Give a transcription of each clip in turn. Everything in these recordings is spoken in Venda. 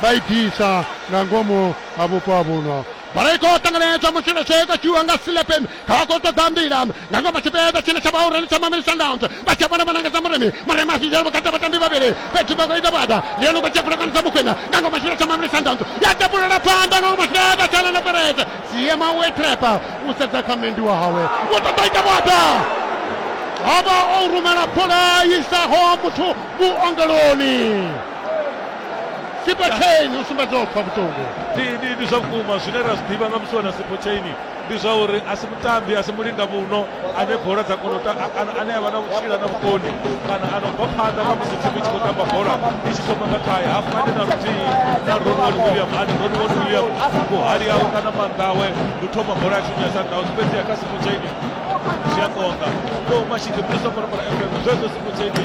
vha i ḓisa nga ngomu ha vhupo ha vhuno bola i khou ṱanganedzwa musi vha tshee kothiwa nga silepen kha vha khou ṱoḓa mbila nga ngomu tshipiḓa tshine tsha vha urani tsha mameli sundowns vha tshia vhona vhanangedza murimi murimi a zwidela vhukati ha vhatambi vhavhili fhedzi vha khou ita vhuaḓa ndi yone u khou tshia pfulekano dza mukhwena nga ngomu tshipiḓa tsha mameli sundowns ya tapulela phanḓa nga ngomu tshipiḓa tsha lana pereze siema we trepa u sedza kha mendi wa hawe u ṱoḓa ita vhuaḓa a vha o rumela bola i isaho muthu vhuongeloni sipo chain u sumbedza u pfa vhuṱungu ndi ndi ndi zwa vhukuma zwine ra zwi ḓivha nga musi wana sipo chaini ndi zwa uri a si mutambi a si mulinga muno ane bola dza kona u ta- a- a- ane a vha na vhutshila na vhukoni kana a no bva phanḓa nga musi thimu i tshi khou tamba bola i tshi thoma nga khae hafu ane na luthihi na ronward william ane ronward william vhuhali awe kana maanḓa awe ndi u thoma bola ya thimu ya sundowns fhedzi ya kha sipo chaini zwi a konḓa o mashidi mbuso fana fana fm zwezwo sipo chaini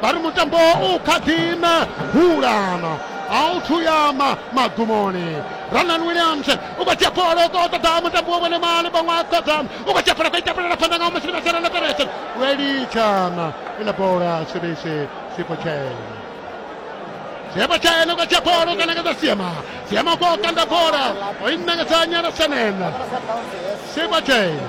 vha ri mutambo u kha ḓi na hulana a u thuyama magumoni ranan williams u khou dzhia bola u khou ṱoḓa mutambi wa vhone mali vhaṅwe a ṱoḓa u khou dzhia bola khou itapulela phanḓa nga masheleni a serana perese welitshana ila bola sebese sipotshele Sema tena kwa Chapolo kanakata Sema. Sema kwa kanda bora. Oinna ka sanya la senena. Sema tena.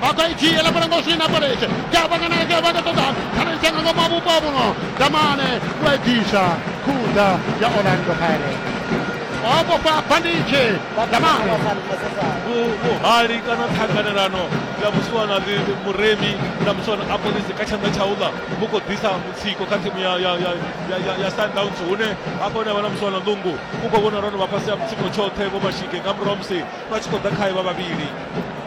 vha i dzhiela fhala ngo swina paletshe kavhanganeke vha ḓo ṱoḓa khaneitsha nga ngoma vhupo ha vhuno damane u a i bvisa khutha ya orlando pirates o vhofha banditshe vha damane Vhu- vhuhali kana ṱhanganelano ya musiwana ḽi- muremi na musiwana a polisi kha tshanḓa tsha uḽa vhu khou ḓisa mutsiko kha thimu ya- ya- ya- ya- ya- ya sundowns hune hafho hune vha na musiwana ḽungu u khou vhona ro no vha fhasi ya mutsiko tshoṱhe vho mashige nga murahu musi vha tshi khou ḓa khae vha vhavhili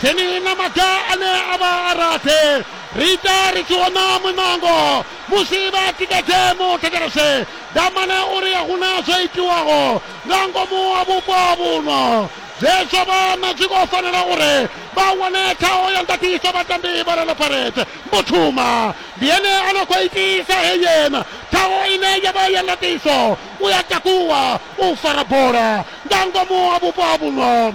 Keni na maga ane a vha a rathi ri ita ri tshi hona muṋango musi vha tikedze muthetshelese Damane uri a huna zwo itiwaho nga ngomu ha vhupo vhuno zwe zwa vha na zwi khou fanela uri vha wane ṱhaho ya ndaṱiso vhatambi vha Orlando Pirates. Mbuthuma ndi ene a no khou itisa heyena ṱhaho ine ya vha ya ndaṱiso, u ya takuwa u fara bola nga ngomu ha vhupo vhuno.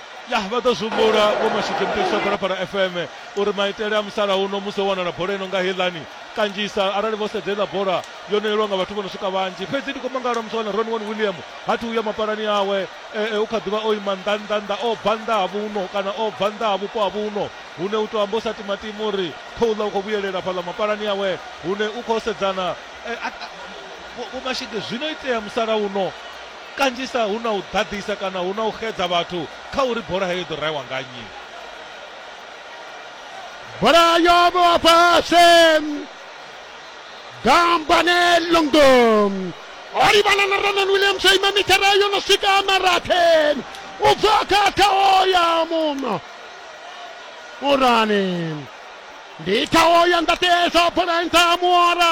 ya vha ḓo zwihumbula vho mashudze mutetsha phalaphala fm uri maitele a musalauno musi o wanala bola ino nga heiḽani kanzhisa arali vho sedza iḽa bola yo no yelwa nga vhathu vho no swika vhanzhi fhedzi ndi khou mangala musi wana ron one william ha thi uya mapalani awe eh, eh, u kha ḓivha o ima nnḓa nnḓa nnḓa o bva nnḓa ha vhuno kana o bva nnḓa ha vhupo ha vhuno hune u tou amba u sa timatima uri khouḽa u khou vhuyelela fhaḽa mapalani awe hune u khou sedzana eh, vhomashige zwino itea musalauno Kanzhisa hu na u ḓaḓisa kana hu na u xedza vhathu kha uri bola heyo i ḓo rahiwa nga nnyi. Bola yo vhewa fhasi, Gambane Lungu o livhana na Ronon Williams o ima mithara yo no swika marathi u bva kha thaho ya muno murani ndi thaho ya ndaṱesa bola nṱha ha muora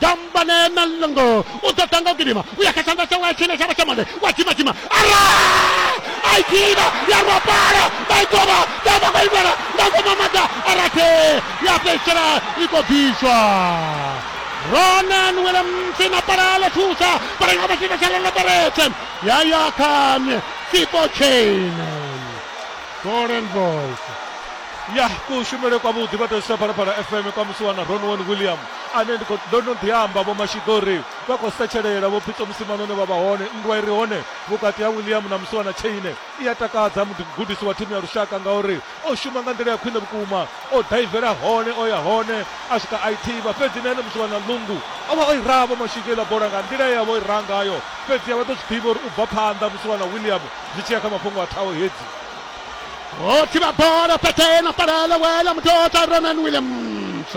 tambane na lngo u ḓo ḓa nga u gidima u ya kha tshanḓa tshawe a tshine tshavha tsha mande wa dzima dzima ara a i gidima ya rwa pala vha i kovha ya vha khou imbela nga ngoma maḓa arathe ya fhedzisela i khou bviswa ronan williams na pala ḽo thusa pala nga vhashita tsha loloberetse ya ya kha fipo chain golden boys ya kushumele kwavhuḓi vha tou isa phalaphala fm kwa musi wana ronwan william ane ndi khou, ndo no ḓi amba, Vho Mashiḓo ri vha khou setshelela, Vho Pitso musi Manone vha vha hone, nndwa i re hone vhukati ha William na Musiwana Chaine i a takadza. Mugudisi wa thimu ya lushaka ngauri o shuma nga nḓila ya khwine vhukuma, o daivela hone, o ya hone, a swika a i thivha, fhedzi na ene Musiwana Lungu o vha o i raha Vho Mashika iḽa bola nga nḓila ye a vha o i raha ngayo, fhedziha vha ḓo zwi ḓivha uri u bva phanḓa Musiwana William zwi tshi ya kha mafhungo a thaho hedzi. O thivha bola fhethu he na fhalela William Tota, Ronan Williams.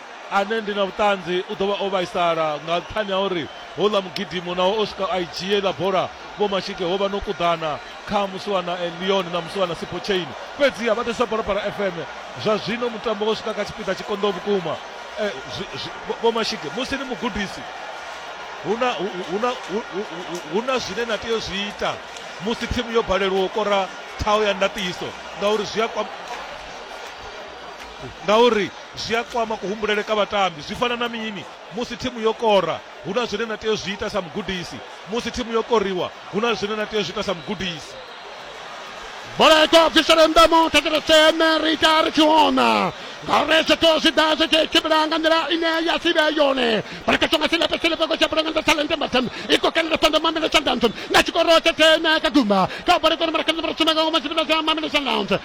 ane ndi na vhuṱanzi u ḓo vha o vhaisala nga nṱhani ha uri houḽa mugidimo naho o swika a i dzhia iḽa bola vho Mashike ho vha no kuḓana kha musiwana Leon na musiwana Sipho Chain fhedziha vha ḓisa Phalaphala FM zwa zwino mutambo wo swika kha tshipiḓa tshi konḓaho vhukuma eh, vho Mashike musi ni mugudisi huna huna huna zwine na tea zwi ita musi thimu yo balelwa u kora thaho ya ndaṱiso ngauri zwi a Ngauri zwi a kwama kuhumbulele ka vhatambi. Zwi fana na mini? Musi thimu yo kora, hu na zwine na tea u zwi ita sa mugudisi. Musi thimu yo koriwa, hu na zwine na tea u zwi ita sa mugudisi. Bola i khou bvisela nnḓa mu thetshelese ene ri ita ri tshi hona ngauri zwithu zwi ḓa zwi tshi tshimbila nga nḓila ine ya si vhe yone bola kha songa silepe silepe ko tshaphula nga nḓa talente mbatsam i khou kanela sanda mamele sundowns nga tshikoro tsha thene ka gumba kha bola kone mara kanela mara sumeka ngoma tshipila tsha mamele sundowns